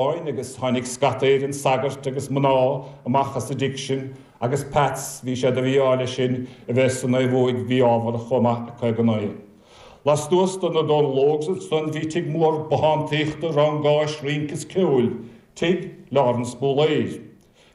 Eoin agus tháinig scata Éireann sagairt agus mná amach as a dtigh sin agus Pats bhí sé de mhí-ádh leis sin a bheith san aoibh uaidh bhí ábhar chomh maith acu ag an oidhe. Lastuas do na Dónalógs ansan bhí tigh mór bothántaíochta, rangáis, rince is ceoil. Tigh Laurence Bóiléir.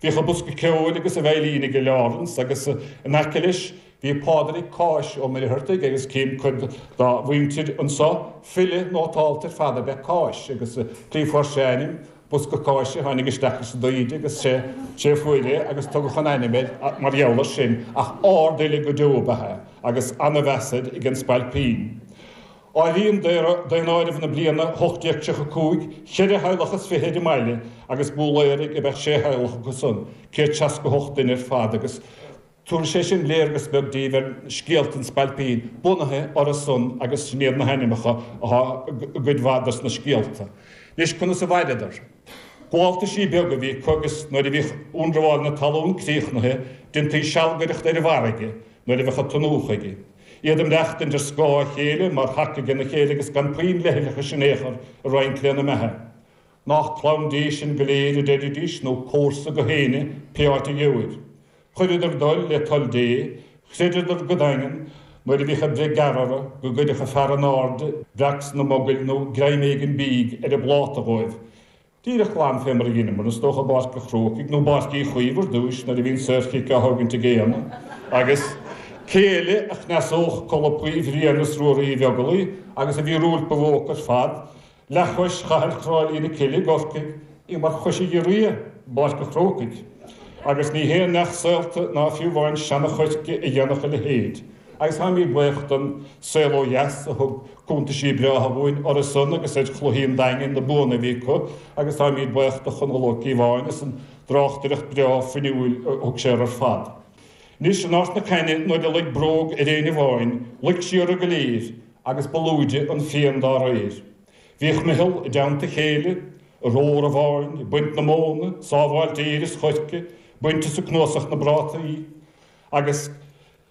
Bhíodh a bosca ceoil agus a veidhlín aige Lawrence agus in aice leis bhí Pádraig Cáis Ó Muircheartaigh agus cím cuid dá mhuintir anso, file nótálta ar fad ab ea Cáis agus an tslí fuair sé a ainm, Bosca Cáise a tháinig isteach ins an dtaoide agus sé a fuair é agus tugadh an ainm air mar gheall ar sin ach árd fhile go deo ab ea é agus ana mheas air ag an Spailpín. Áiríonn daonáireamh na bliana 1835 cheithre theaghlach is fiche ar an mbaile agus Bóiléaraigh ab ea sé theaghlach acu san, 168 duine ar fad, agus tabharfaidh sé sin léargas beag daoibh ar scéalta an Spailpín bunaithe orthu san agus sin iad na hainmneacha atá i gcuid mhaith dos na scéalta. Anois, conas a mhaireadar? Gabháltaisí beaga a bhí acu agus nuair a bhíodh ionramháil na talún críochnaithe, déantaí sealgaireacht ar an bhfarraige nuair a bheadh an t-ionú chuige. Iad ag maireachtaint ar scáth a chéile mar thaca aige na chéile agus gan puinn leithleachais in aon chor ag roinnt lena mbeatha. Nách clann Dé sinn go léir a deiridís nó comharsa gach éinne pé áit a gheobhair. Chuireadar a dtoil le toil Dé, chreideadar go daingean nuair a bhíodh an bhreith gearr orthu go gcuirfeadh an Fear in Airde breac sna mogaill nó greim éigin bídh ar a bpláta dhóibh Díreach glan fé mar a dheineamar, is dócha, i bPáirc an Chrócaigh nó i bPáirc Uí Chaoimh ar dtúis nuair a bhí an saorchic á thógaint ag Éanna agus cé eile a chneasódh colpaí Bhriain is Ruaidhrí Uí Bheaglaoich agus a mhíorúilt ba mhó ar fad, leathchois Chathail Chráilí na Cille i gCorcaigh. Í mar chois ghiorria i bPáirc an Chrócaigh. Agus ní haon neach saolta ná fiú amháin seana-choirce a dhéanfadh a leithéid. Agus táimid buíoch don Saol Ó Dheas a thug cúntaisí breátha dhúinn orthusan agus ar chluichí an Daingin, na buanna a bhí acu agus táimid buíoch do Chonall Ó Cíobháin as an dtráchtaireacht breá fuinniúil a thug sé ar ar fad. Anois, in Ard na Caithne, nuair a luig bróg ar éinne amháin, luig sí orthu go léir agus ba lúide an phian dá réir. Bhíodh meitheal i dteannta chéile, ag rómhar an bháin, ag baint na móna, sábháilt fhéir is choirce, baint is ag cnuasach na bprátaí agus.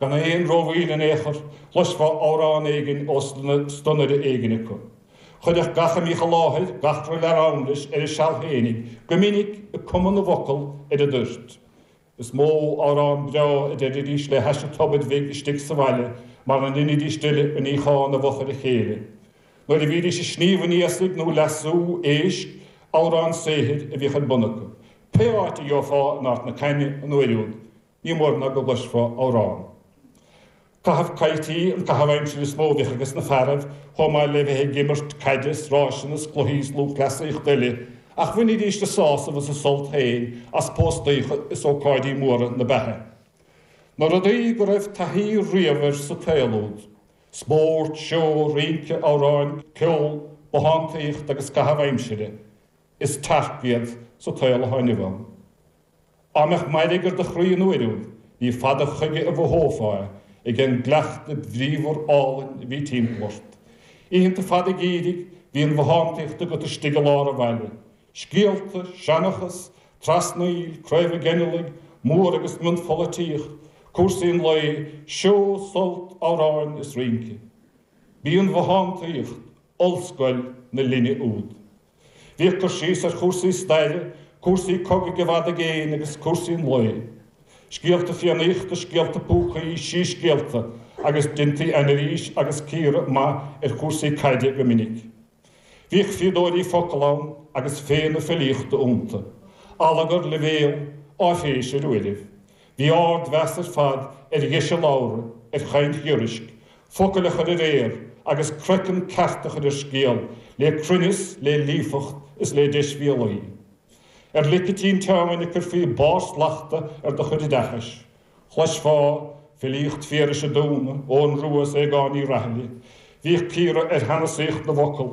Gan aon ró-mhoill in aon chor, chloisfeá amhrán éigin ó stonaire éigin acu. Chuirfeadh gach a mbíodh i láthair gach re leathrann leis ar a seal fhéinig, go minic ag cumadh na bhfocal ar an dtoirt. Is mó amhrán breá a deiridís le hais an tobair bhig istigh sa bhaile mar a ndeinidís uile an níochán i bhfochair a chéile nuair a bhídís ag sníomh an iasaigh nó leasú éisc, amhrán saothair a bhíodh ar bun acu pé áit a gheofá in Ard na Caithne an uair úd. Ní mór ná go gcloisfeá amhrán. Caitheamh caidhtí, an caitheamh aimsire is mó a bhíodh ages na fearaibh, chomh maith le bheith ag imirt caide 's ráiseanna 's cluichí is lúthchleasaíocht eile, ach bhainidís a sásamh is a sult féin as póstaíocha is ócáidí móra na beatha. Na rudaí go raibh taithí riamh air sa tsaol úd, spórt, seó, rince, amhráin, ceol, bothántaíocht agus caitheamh aimsire, Is tearc iad sa tsaol atá inniu ann. Á mbeadh mairg ar do chroí an uair úd, ní fada chuige a mhothófá é, ag an gcuileachta bhríomhar álainn a bhí timpeall ort. Oícheanta fada geimhridh, bhí an bhothántaíocht agat istigh i lár an bhaile. Scéalta, seanchas, trasnaíl, craobha geinealaigh, mór agus mionpholaitíocht, cúrsaí an lae, seó, sult, amhráin is rince. B'í an bhothántaíocht, ollscoil na linne úd. Bhíodh cur síos ar chúrsaí staire, cúrsaí cogaidh i bhfad i gcéin agus cúrsaí an lae. Scéalta Fiannaíochta, scéalta púcaí, síscéalta agus deintí anailís agus cíoradh maith ar chúrsaí caide go minic. Bhíodh fíodóirí focal ann agus féith na filíochta iontu. Allagar, leibhéal, áiféis ar uairibh. Bhí ardmheas ar fad ar dheis a labhartha, ar chaint ghiorraisc, focail a chur ar aer agus croiceann ceart a chur ar scéal le cruinneas, le líofacht is le deisbhéalaí. Ar lic an tinteáin a cuirfí barr slachta ar do chuid oideachais, chloisfeá filíocht Phiarais an Dúna, Eoghan Rua is Aogáin Uí Rathaille. Bhíodh cíoradh ar shanasaíocht na bhfocal.